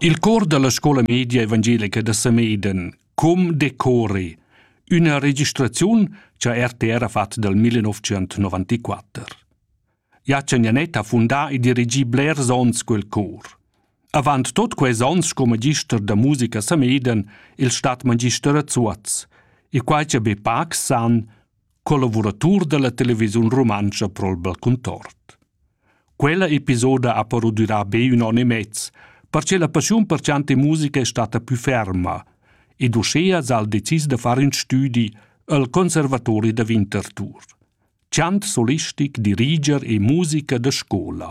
Il cor dalla scola media evangelica da Samedan, Com decori, üna registraziun cha RTR ha fat dal 1994. Jacan Janet ha fundà e dirigì blers ons quel cor. Avant tot quels ons sco magister da musica a Samedan il stat magister a Zuoz, e quai cha be pacs san, collavuratur dalla televisiun rumantscha Pro'l Contort. Quella episoda ha però durà be ün on e mez, perche la passiun per chant e musica è stata più ferma ed uschea s'ha decis da far ün stüdi al Conservatori da Winterthur. Chant solistic, diriger e musica da scola.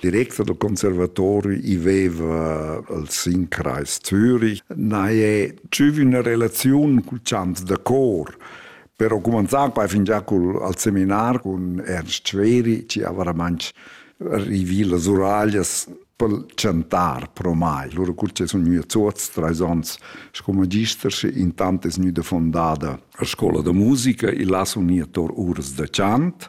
Direktor del conservatorio i veva al Sinkreis Zürich. Na è tschüvi una relazione cul chant da cor. Però cumanzar poi fingià col, al seminar con Ernst Schweri, ci aveva manch rivì las uraglias per chantar pro mai. Lura cur che sun gnü a Zuoz, trais ons sco magister, sche intant es gnüda fondada la scola da musica e là sun gnir tor uras da chant.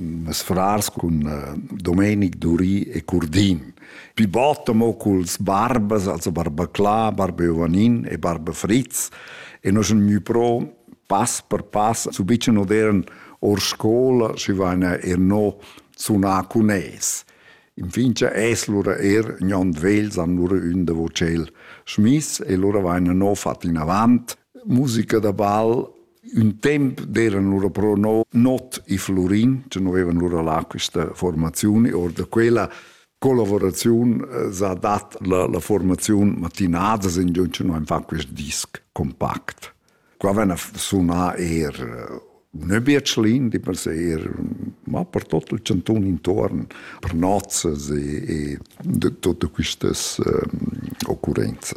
Mes frars cun Domenic Dury e Curdin. Pi bod amo culs barbas, also barba Cla, barba Jovanin e barba Fritz. E nos ün gnü pro pass per pass su bicen odern or scola, schi vaina er no sunà cun es. Infin es lura er gnond vegls han lura ün da vocel schmiss e lura vaina no fat inavant musica da bal un temp d'eran lura però no not e Florin, che no avevan lura là questa formazione, or da quella collaborazione eh, s'ha dat la, la formazione mattinada, in giorno che noi fa questo disc compact. Qua vena sunar er eh, un biatschlin di per sé, er, ma per tutto il cantun intorno, per nozze e, e de, tutte queste um, occurrenze.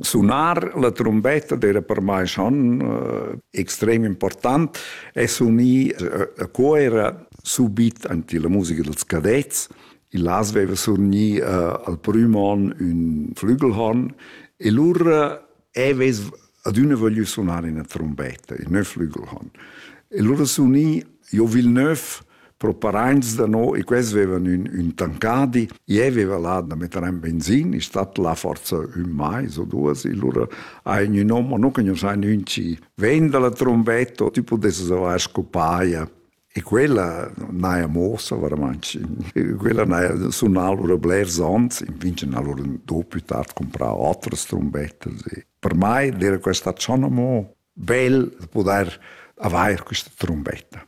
Sunar la trombetta d'era per mai schon eh, extrem important e sunì a co era subit anti la musica dels cadets. Il las aveva surni eh, al prim on un flügelhorn e lur aveves ad una voglio suonare una trombetta, il neuf flügelhorn. E lur sunì, io Villeneuve, Pro paraints da no, e quels vevan ün, ün tancadi, ie veva là da metter in benzin, è stat là forza ün mais o duas, e lura ha ün hom, o nu conoschain ün chi ven da la trombetta, tü pudesses avair scopaia. E quella n'haja mossa veramente. Quella n'haja sunà lura blers onns, in vincen ha lura dopo più tard comprà otras trombettas. E per mai era questa schon amò bel da poter avair questa trombetta.